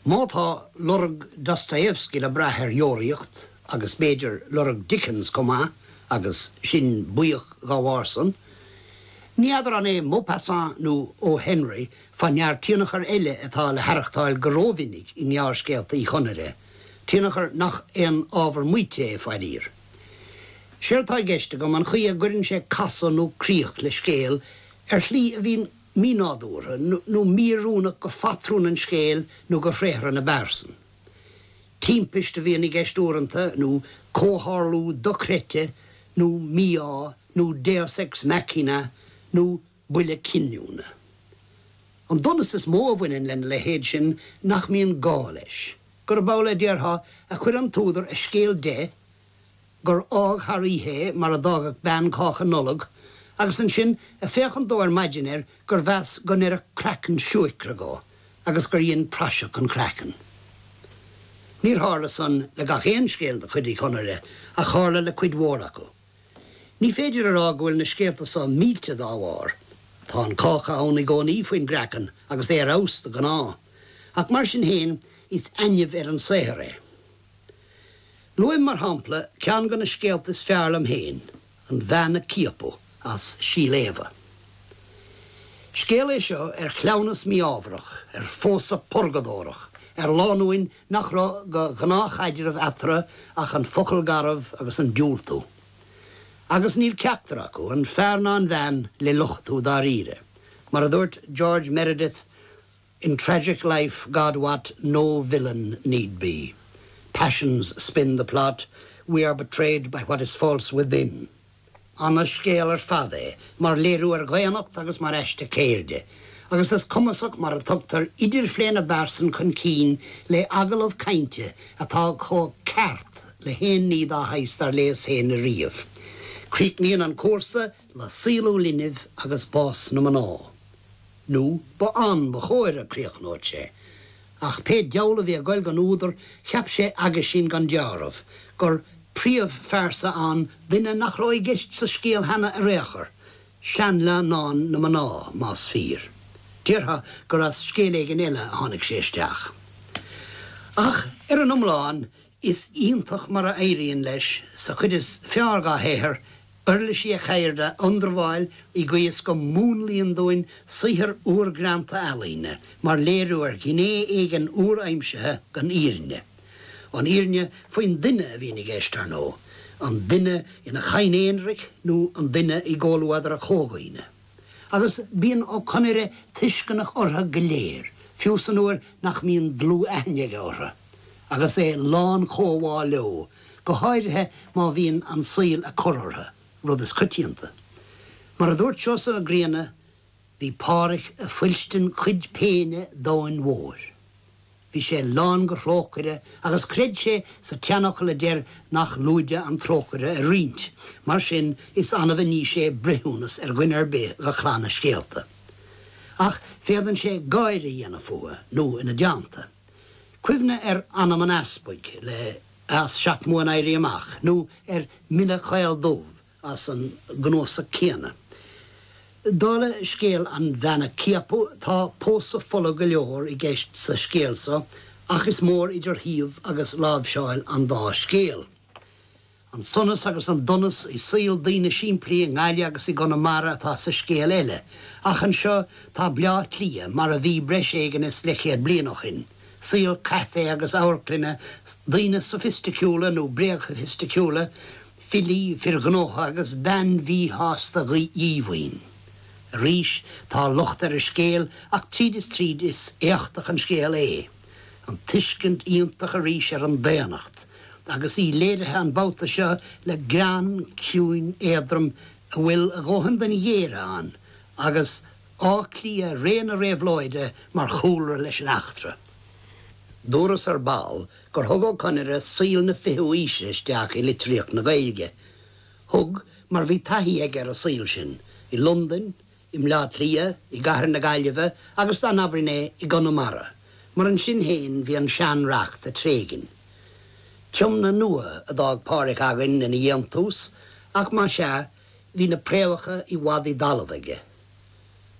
Má tá lorg Dostoevsky le brath ar Dheoraíocht, agus b'fhéidir lorg Dickens chomh maith, agus sinn buíoch dá bharrsan, ní fheadar an é Maupassant nó O. Henry fé ndear tionchar eile atá le haireachtáil go rómhinic i ngearrscéalta Uí Chonaire, tionchar nach aon ábhar maíte é, fairíor. Séard tá i gceist agam an chaoi a gcuireann sé casadh nó críoch le scéal ar shlí a bhíonn. mínádúrtha nó míoiriúnach dho phatrún an scéil nó dho thréathra na bpearsan. Timpist a bhíonn i gceist uaireanta, nó comhtharlú dochreite, nó mí-ádh, nó deus ex machina, nó buille cinniúna. An donas is mó a bhaineann lena leithéid sin nach mbíonn gá leis, gurb amhlaidh, a déarfá, a chuir an t-údar a scéal de, gur fhág thar oíche é mar a d'fhágfadh bean cáca Nollag, agus ansin ag féachaint dó ar maidin air gur mheas go n-oirfeadh craiceann siúicre dhó, agus gur dhein praiseach an craiceann. Níor tharla san le gach aon scéal de chuid Uí Chonaire, ach tharla le cuid mhór acu. Ní féidir a rá go bhfuil na scéalta so millte dá bharr. Tá an cáca ann i gcónaí faoin gcraiceann agus é ar fheabhas de ghnáth, ach mar sin féin is ainimh ar an saothar é. Luaim, mar shampla, ceann de na scéalta is fearr liom féin, An Bhean a Ciapadh, as Síol Éabha. Scéal é seo ar chleamhnas mí-ámharach, ar phósadh purgadórach, ar lánúin nach raibh de ghnáthchaidreamh eatarthu ach an focal garbh agus an diúltú. Agus níl ceachtar acu, an fear ná an bhean, le lochtú dáiríre. Mar a dúirt George Meredith, In tragic life God wot no villain need be, Passions spin the plot, we are betrayed by what is false within. Ana-scéal ar fad é mar léiriú ar dhaonnacht agus mar aiste ceirde, agus is cumasach mar a tugtar idirphlé na bpearsan chun cinn le hagallamh cainte atá chomh ceart le haon ní dá shaghas dár léas féin ariamh. Críochnaíonn an cúrsa. le saolú linbh agus bás na mná, nó ba ann ba chóir go gcríochnódh sé. Ach pé diabhal a bhí ag goil don údar, cheap sé aguisín gan deáramh, gur príomhphearsa ann duine nach raibh i gceist sa scéal cheana ar aon chor, seanleannán na mná, más fíor. Déarfá gur as scéal éigin eile a tháinig sé isteach. Ach ar an iomlán, Is iontach mar a éiríonn leis, sa chuid is fearr dá shaothar, uirlisí a cheirde a ionramháil i gcaoi is go múnlaíonn dúinn saothar úr greanta ealaíne mar léiriú ar ghné éigin úr-aimsithe den fhírinne. An fhírinne faoin duine a bhíonn i gceist, ar ndóigh, an duine ina chadhain aonraic nó an duine i gcomhluadar a chomhdhaoine. agus bíonn Ó Conaire tuisceanach orthu go léir, fiú san uair nach mbíonn dlúth-aithne aige orthu, agus é lán comhbhá leo, go háirithe má bhíonn an saol ag cur orthu, rud is coitianta. Mar a dúirt Seosamh Mac Grianna, 'Bhí Pádhraic ag fuilstin cuid péine an domhain mhóir. Bhí sé lán de thrócaire agus chreid sé sa tseanfhocal a deir nach lúide an trócaire a roinnt, mar sin is annamh a ní sé breithiúnas ar dhuine ar bith de chlann a scéalta. Ach féadann sé gáire a dhéanamh fúthu, nó ina dteannta. Cuimhnigh ar anam an Easpaig as seacht mbua an Éirí Amach nó ar M'Asal Beag Dubh, as an gcnuasach céanna. Dála scéal an bhean a ciapadh, tá pósadh folamh go leor i gceist sa scéal so ach is mór idir shuíomh agus láimhseáil an dá scéal. An sonas agus an donas i saol daoine simplí i nGaillimh agus i gConamara atá sa scéal eile ach anseo tá Bleá Cliath mar a bhí breis éigin is leithchéad bliain ó shin, saol caife agus amharclainne, daoine sofaisticiúla nó bréagshofaisticiúla, Filí, fir ghnótha agus bean mhíshásta dhíomhaoin. Arís, tá locht ar an scéal ach tríd is tríd is éachtach an scéal é. An tuiscint iontach arís ar an daonnacht agus í léirithe an babhta seo le greann ciúin éadrom a bhfuil a dhóthain den ghéire ann agus Áth Cliath ré na réabhlóide mar chúlra leis an eachtra. Dúras ar ball gur thug Ó Conaire saol na fichiú aoise isteach i litríocht na Gaeilge. Thug, mar bhí taithí aige ar an saol sin, i Londain, i mBleá Cliath, i gcathair na Gaillimhe agus, dá n-abrainn é, i gConamara, mar ansin féin bhí an sean-reacht ag tréigin. Tiomna nua a d'fhág Pádhraic againn ina dhéantús, ach má sea, Bhí na préamhacha i bhfad i dtalamh aige.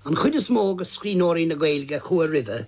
An chuid is mó de scríbhneoirí na Gaeilge a chuaigh roimhe,